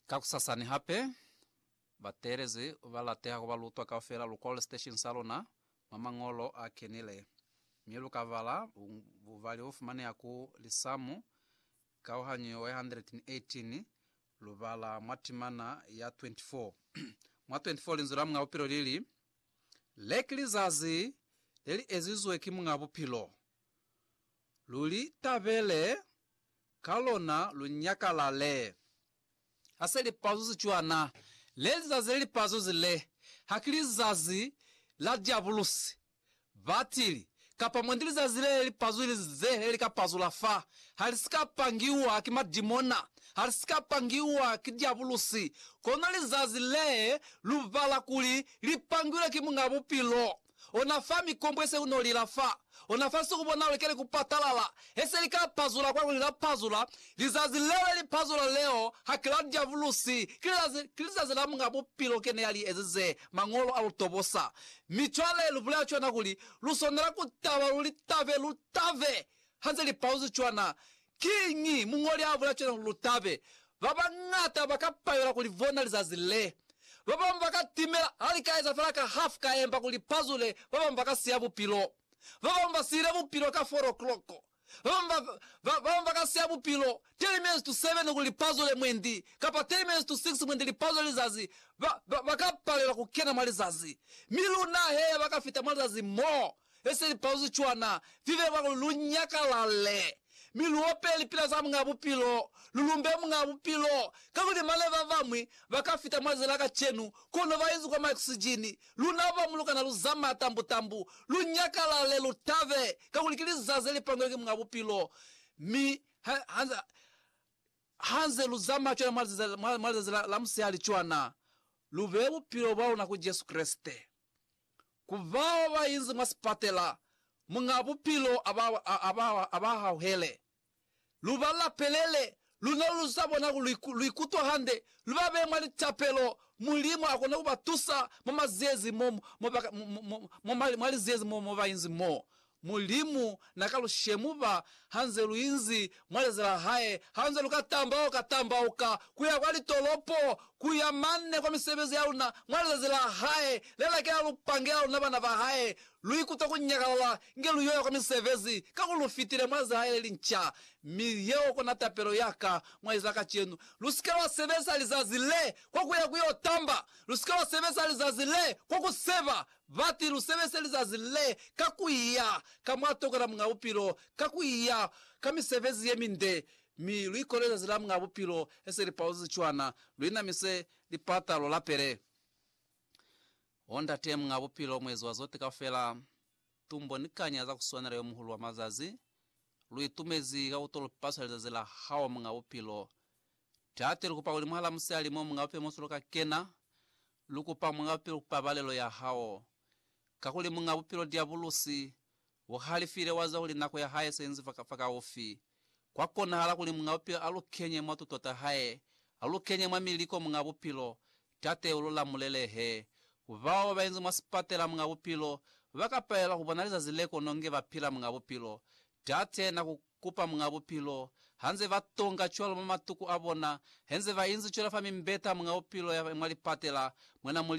Kakusasani hape, bateelezi ba lateha ku ba lutwa kaufela lu kole siteshini sa luna mwa Mañolo a Kenile, mi lu ka bala bubali bo fumaneha ku Lisamu kauhanyo ye 118, lu bala mwa timana ya 24. Mwa 24 Linzwi la Muñ'a Bupilo li li, Le ki lizazi le li ezizwe ki Muñ'a Bupilo. Lu li tabele Ka lona lu nyakalale. Ha se lipazuzi cwana, le lizazi le lipazuzi le, ha ki lizazi la Diabulusi, batili, kapa mwendi lizazi le lipazulize le li ka pazula fa. Ha li si ka pangiwa ki madimona, ha li si ka pangiwa ki Diabulusi, kono lizazi le lu bala kuli li pangilwe ki Muñ'a Bupilo, ona fa mikombwe se uno lila fa ona fa nsiku bona ulekele ku patalala hese li ka pazula kwa kuli la pazula lizazi leo li pazula leo ha ki la diavulusi ki lizazi ki lizazi la munga bupilo kene ya li ezize mangolo a lu tobosa mi cwale lu bulela cwana kuli lu swanela ku taba lu li tabe lu tabe hanze li pauzi cwana Kiñi muñoli a bula cwale kuli lu tabe? Ba bañata ba ka payula ku li bona lizazi le. Ba bañwi ba ka timela ha li ka eza fela ka hafu ka emba ku li pazule, ba bañwi ba ka siya bupilo. Ba bañwi ba siile bupilo ka four o'clock. Ba bañwi ba, ba, ba bañwi ba ka siya bupilo ten minutes to seven kuli li pazule mwendi, kapa ten minutes to six mwendi li pazule lizazi. Ba, ba, ba ka palelwa ku kena mwa lizazi. Mi luna he ya ba ka fita mwa lizazi moo, Ese lipauzi cwana, vivebwa kuli lu nyakalale, mi lu ope lipila za Muñaa Bupilo, lu lumbe Muñaa Bupilo, kakuli mane babañwi ba ka fita mwa zila kacenu, kono ba inzi kwa maoksijini, luna ba mu lu kana lu zamaa tambutambu. Lu nyakalale, lu tabe, kakuli ki lizazi ze li pangilwe ki Muñaa Bupilo. Mi ha, ha, ha nze lu zamaa cwana mwa lizazi, mwa, mwa lizazi la, la musihali cwana, lu bee bupilo bwa luna ku Jesu Kreste. Ku bao ba inzi mwa sipatela, Muñ'a Bupilo a ba hauhele. Lu ba lapelele, luna lu z'a bona kuli lu ikutwa hande, lu ba beye mwa litapelo. Mulimu a kona ku ba tusa mwa liziezi mo ba inzi mo. Mulimu na ka lu shemuba ha nze lu inzi mwa leza la hae, ha nze lu ka tambauka tambauka ku ya kwa litolopo, ku ya mane kwa misebezi ya luna mwa lizazi la hae le lakela lu pangela luna bana ba hae. Lu ikuta ku nyakalala inge lu yo ya kwa misebezi, kakuli lu fitile mwa leza la hae le linca. Mi yeo kona tapelo ya ka mwa lizazi la kacenu, Lu si ke lwa sebeza lizazi le kwa ku ya ku yo tamba, lu si ke lwa sebeza lizazi le kwa ku seba Bati, Lu sebese lizazi le ka ku iya ka mwa toka la Muñ'a Bupilo, ka ku iya ka misebezi ye minde, mi lu ikole lizazi la Muñ'a Bupilo he se li pauzezi cwana, lu inamise lipata, lu lapele. O Ndate Muñ'a Bupilo, Muezi wa zote kaufela, tumbo ni kanya za ku swanela Yo Muhulu wa mazazi, lu itumezi ka ku to lu paswa lizazi la Hao, Muñ'a Bupilo, Tate, lu kupa kuli mwahala musali mo munga bupilo mosolo ka kena, lu kupa munga bupilo ku pabalelo ya hao. Kakuli munga bupilo Diabulusi, u halifile wa ziba kuli nako ya hae se inzi fa kaufi. Kwa konahala kuli munga bupilo a lu kenye mwa tuto ta hae, a lu kenye mwa miliko munga bupilo. Tate, u lu lamulele he. Ku bao ba inzi mwa sipatela munga bupilo, ba ka palelwa ku bona lizazi le kono nge ba pila munga bupilo. Tate, na ku. Kupa Muñ'a Bupilo, Hanze ba tonga cwalo mwa matuku a bona, henze ba inzi cwela fa mimbeta Muñ'a Bupilo ya mwa lipatela, Mwena Mulimu,